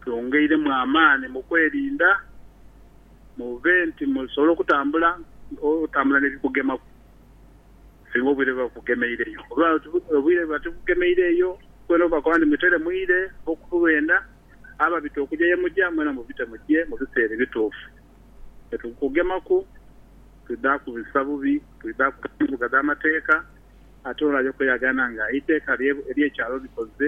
Kyongeiremu amaani mu kwerinda mube nti musobola okutambula otambula n'ebikugemaku singa obwire buba bukugemeireyo. Oba obwire buba tibukugemeireyo, mwena obakoba nti mutere mwire oba okuwenda, ababita okuja ye muja, mwena mubite muje mu biseera ebituufu. Bwe tubukugemaku, twidha kubisa bubi, twidha kuta embuga dh'amateeka, ate olwo aja okweyagana nga eiteeka ery'ekyalo likoze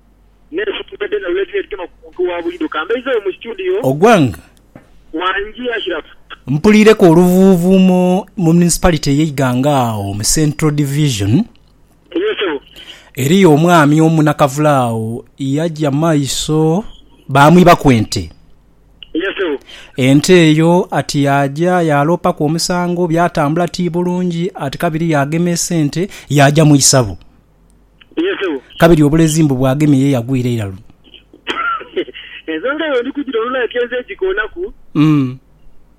n'ensonga dhoona lwe dhira edhitema ku muntu wa buliidho. Ka mbeizeeyo mu situdiyo. Ogwang. Wangi Ashiraf. Mpuliireku oluvuuvuumo mu municipality ey'e Iganga agho mu Central Division. Eyo sebo. Eriyo omwami omu nakavule agho yaja maiso baamwibaku ente. Eyo sebo. Ente eyo ati yaaja yaaloopaku omusango, byatambula ti bulungi ati kabiri yaagemeesa ente yaaja mu isabu. Kabiri obulezi mbu bwagemye ye yagwira eira luno. Ensonga eyo ndi kujira olunaku ekenze egikoonaku,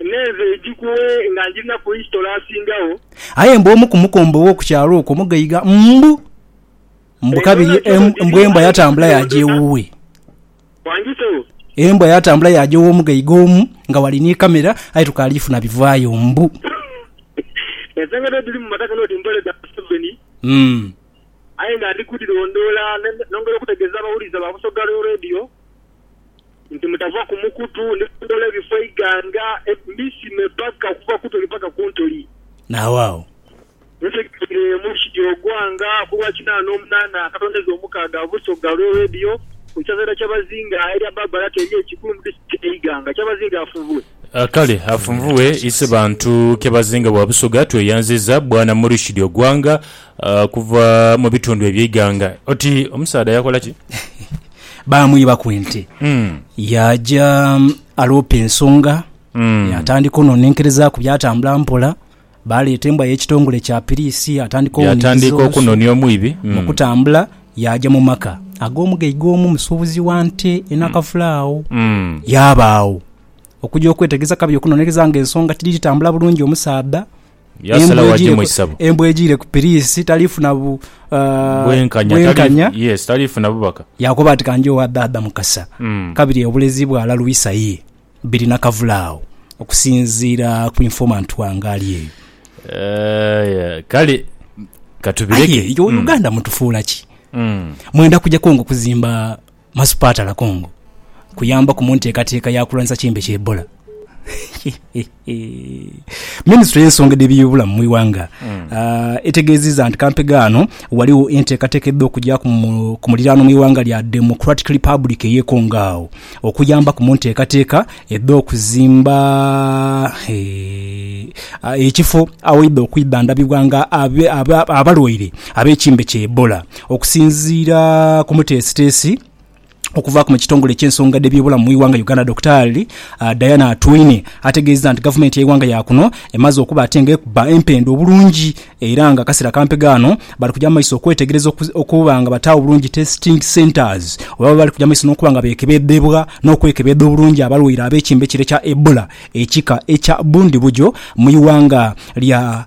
naye nze ngikuwe nga ngirinaku isitolo asingagho. Aye mbu omu ku mukombo ow'oku kyalo okwo mugaiga mbu, mbu kabiri mbu embwa yatambula yaaja ewuwe. Wandhitewo. Embwa yatambula yaaja ow'omu ghaiga omu nga ghali ni kamera aye tukaali funa bivaayo. Mbu. Ensengeta edhiri mu mataka n'oti mbole dha Museveni. Umm. Aye nga ndi kudhirondoola nongera okutegeeza abawulize ba Busoga Real Radio nti mutava ku mukutu. Ndi kudhoola ebifo eighanga, Misime paka okuva ku Ntoli paka ku Ntoli. Naawaawo. Wetegereze omuluki gy'ogwa nga ku lwa kinaana n'omunaana akatondeza omukaaga ha busoga lwe Radio ku kyazaira Kyabazinga erya Barbara Terie Kikulu mu Disitulikiti e Iganga. Kyabazinga afunvue. Kale afunvue ise bantu Kyabazinga bwa Busoga tweyanziza bwana Muluki Dyogwanga okuva mu bitundu ebye Iganga. Oti omusaadha yakola ki? Baamwibaku ente. Yaaja aloopa ensonga, yaatandika ononenkerezaaku byatambula mpola. Baaleeta embwa y'ekitongole kya piriisi atandika ouniriza olusu. Yaatandiika okunonia omwibi. Mu kutambula, yaaja mu maka ag'omugaiga omu musuubuzi wa nte e Nakafula agho. Yaaba agho okuja okwetegeza kabiri okunonereza nga ensonga tidhiri tambula bulungi omusaadha. Yaasalawo agye mu isabo. Embwa ejiire ku piriisi tali funa bwenkanya. Yes, tali funa bubaka. Yaakoba ati, Ka nje owa dhaadha Mukasa kabiri obulezi bwala Lwisa ye. Biri nakavule agho okusinziira ku informant wange ali eyo. Aye kale katubireke. Aye iwe Uganda mutufuula ki? Mwenda kuja Congo kuzimba masupaatala Congo kuyambaku mu nteekateeka ya kulwanisa kimbe kya Ebola? Minisitule y'ensonga edh'eby'obulamu mu ighanga etegeezizza nti kampe gaano ghaligho enteekateeka edha okugya ku muliraano mu ighanga lya Democratic Republic ey'e Congo agho okuyambaku mu nteekateeka edh'okuzimba ekifo awaidha okwidhandhabibwa nga abalwaire ab'ekimbe kya Ebola. Okusinziira ku muteesiteesi, Okuvaaku mu kitongole eky'ensonga dh'ebyobulamu mu ighanga Uganda Dokitaali Diana Atwine ategeezezza nti gavumenti y'eighanga ya kuno emaze okuba ate nga ekuba empenda obulungi era nga akasera kampi ghano bali kuja mu maiso okwetegereza okuba nga bataagho bulungi testing centres oba bali kuja mu maiso n'okuba nga beekebedhebwa n'okwekebedha obulungi abalwaire ab'ekimbe kire kya Ebola ekika ekya bundibugyo mu ighanga lya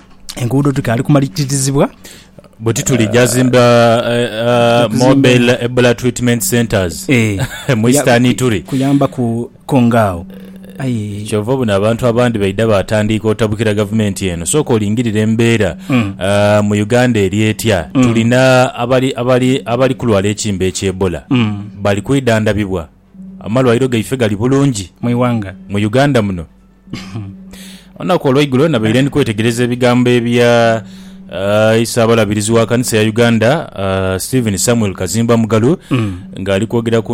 enguudo dhikaali kumaliririzibwa. bwe tituli gyazimba eh, ah, Okuzimba- mobile ebola treatment centers Eh, mu eastern ituri kuyamba ku kongaawo aye kyova obona abantu abandi baidha batandiika otabukira gavumenti eno sooka olingirira embeera Hmm. ah, mu uganda eri etya tulina abali, abali, abali kulwala ekimba ekyebola Hmm. bali kwidhandabibwa amalwaliro gaife gali bulungi mu iwanga mu uganda muno Olunaku olweigulo nabaire ndi kwetegereza ebigambo ebya uh, isaabalabirizi wa kanisa ya Uganda uh, Stephen Samuel Kazimba Mugalu mm. nga ali kwogera ku